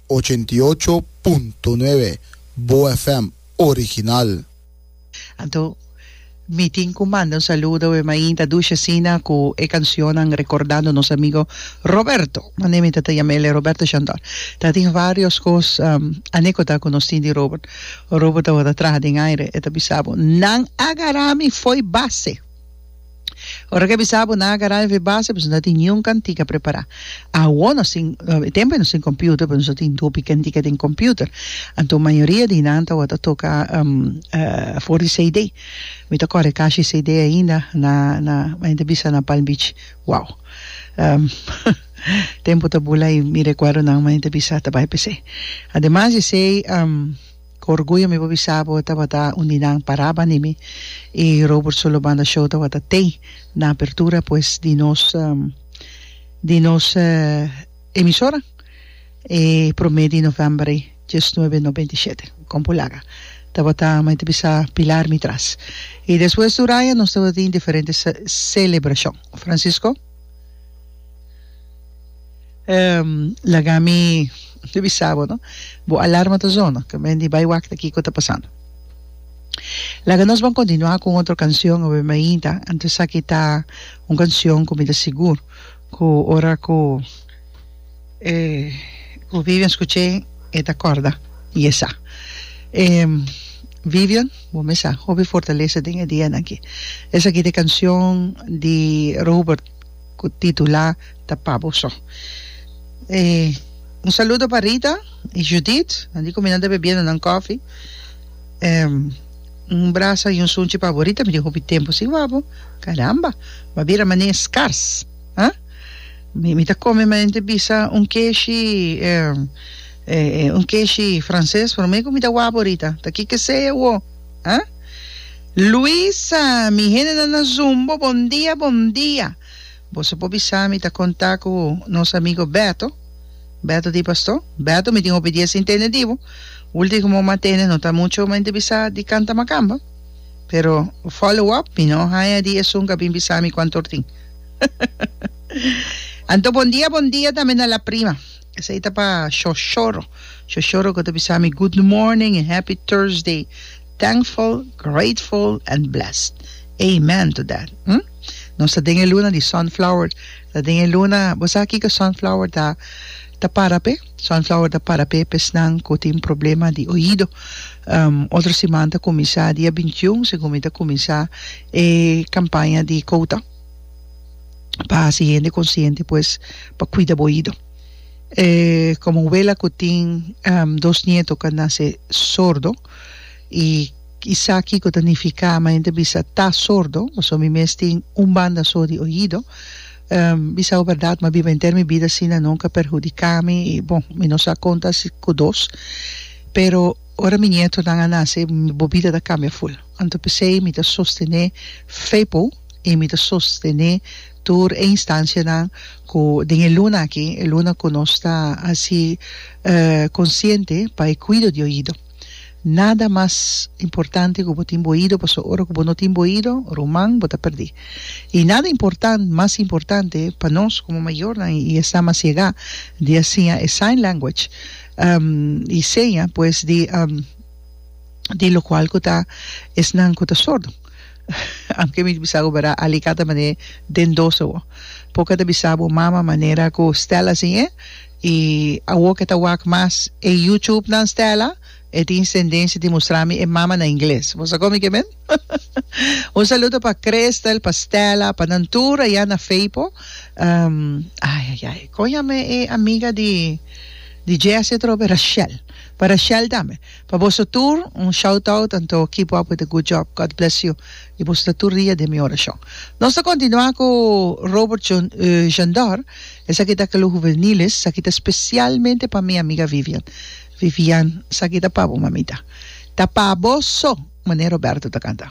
Ochenta i ocho punto nuebe Boa FM original. Anto mi tin cu manda un saludo e mainta dushi asina cu e cancionnan recordando nos amigo Roberto. Mane mi tata yama ele Roberto Shandor. Ta tin varios cos anecota cu nos tin di Robert. Robert awor ta traha den aire. E ta bisa bo, Nan a gara mi fo'i base. Ora ke bisa bo na agará e vebase pues no tin niun kantika prepará. Awo nos tin e tempo e nos tin computer pues nos a tin hopi kantika den computer anto mayoria di nan tawata toka for di CD mi ta kòrda e kashi di CD ainda na na mi ta bisa na palm beach wow tempo ta bula i mi rekuerdonan mi ta bisa ta bai p'esei ademas di esei Ku orguyo mi por bisa bo tabata un di nan paraba ni mi y Robert Solo Banda Show tabata tey na apertura pues di nos di nos emisora e prome di november ey diesnuebe no beinti shete compu laga tabata mi ta bisa pilar mi tras y despues tur aña nos tabata tin diferente celebracion Francisco. Laga mi bisa bo no. Bo alarma ta zona. Ka men di bai wakta kiko ta pasando. Laga nos ban kontinuá ku un otro kansion awe mi ainta. Anto esaki ta un kansion ku mi ta sigur ku ora ku ku Vivian skuch'é e ta kòrda di esá. Vivian, bo mesa hopi fortalesa den e dianan aki. Esaki ta e kansion di Robert. cu titula ta Pa Boso. E un saludo pa Rita y Judith, nan di cu mi nan ta bebiendo nan coffee. E un brasa y un sunchi pa bo Rita, mi tin hopi tempo sin wak bo, caramba, bo a bira mane e scars, ah? Mi mi ta come maente bisa un keshi e e un keshi frances, pero mi cu mi ta wak bo Rita, ta kiko sea awo. Huh? Luisa, mi hendenan na Zoom bo bon dia, bon dia. Boso por bisa mi ta conta cu nos amigo Beto. Beto di pasto? Beto, mi tin hopi dia sin tende di bo. Ultimo cu mama tende no ta mucho mente bisa di canta macamba. Pero follow up mi no haya di esun cu a bin bisa mi cu anto tin. Anto bon dia, bon dia tambe na la prima. Esei ta pa Shoshoro. Shoshoro ku ta bisa mi Good morning and Happy Thursday. Thankful, grateful and blessed. Amen to that. Hm? Nos ta den e luna di sunflower. Ta den e luna, bo sa kiko sunflower ta ta para p'e? Sunflower ta para p'e esnan ku tin problema di oido. Um otro siman ta kuminsá dia bintiun segun mi ta kuminsá e kampaña di kouta. pa hasi hende konsiente pues pa kuida bo oido. E komo un wela ku tin dos nieto ku a nase sordo i i sa kiko ta nifiká ma hende bisa ta sordo, pasobra mi mes tin un banda so di oido, bisao bèrdat ma biba henter mi bida asina nunka perhudiká mi i bon mi no sa kon ta hasi ku dos pero ora mi nietonan a nase bo bida ta kambia ful anto p'esei mi ta sostené fe pou. y mi ta sostene tur e instancianan cu den e luna aki, e luna cu nos ta haci consciente pa e cuido di oido. Nada mas importante cu bo tin bo oido pasobra ora cu bo no tin bo oido, ruman, bo ta perdi. Y nada important, mas importante pa nos como mayornan y esta mas yega di a siña e sign language y seña pues di di locual cu ta esnan cu ta sordo. Anke mi ta bisa ku bera alikata mane den dosa bo por ke ta bisa bo mama manera ku Stella sin e i awo ke ta wak mas e YouTube nan Stella e tin sendensia di mustra mi e mama na ingles bo sa kon mi ke men un saludo pa Christel pa Stella pa nan tur aya na Feipo ayayay kon yama e amiga di di Jesse atrobe Rashel pa Rashel tambe. Pa boso tur un shout out anto kipo apo ta good job God bless you y boso ta tur dia den mi orashon nos ta kontinua ku Robert John Jondor esaki ta Club Juveniles esaki ta spesialmente pa mi amiga Vivian Vivian saki ta pa bo mamita ta pa boso mane Roberto ta kanta.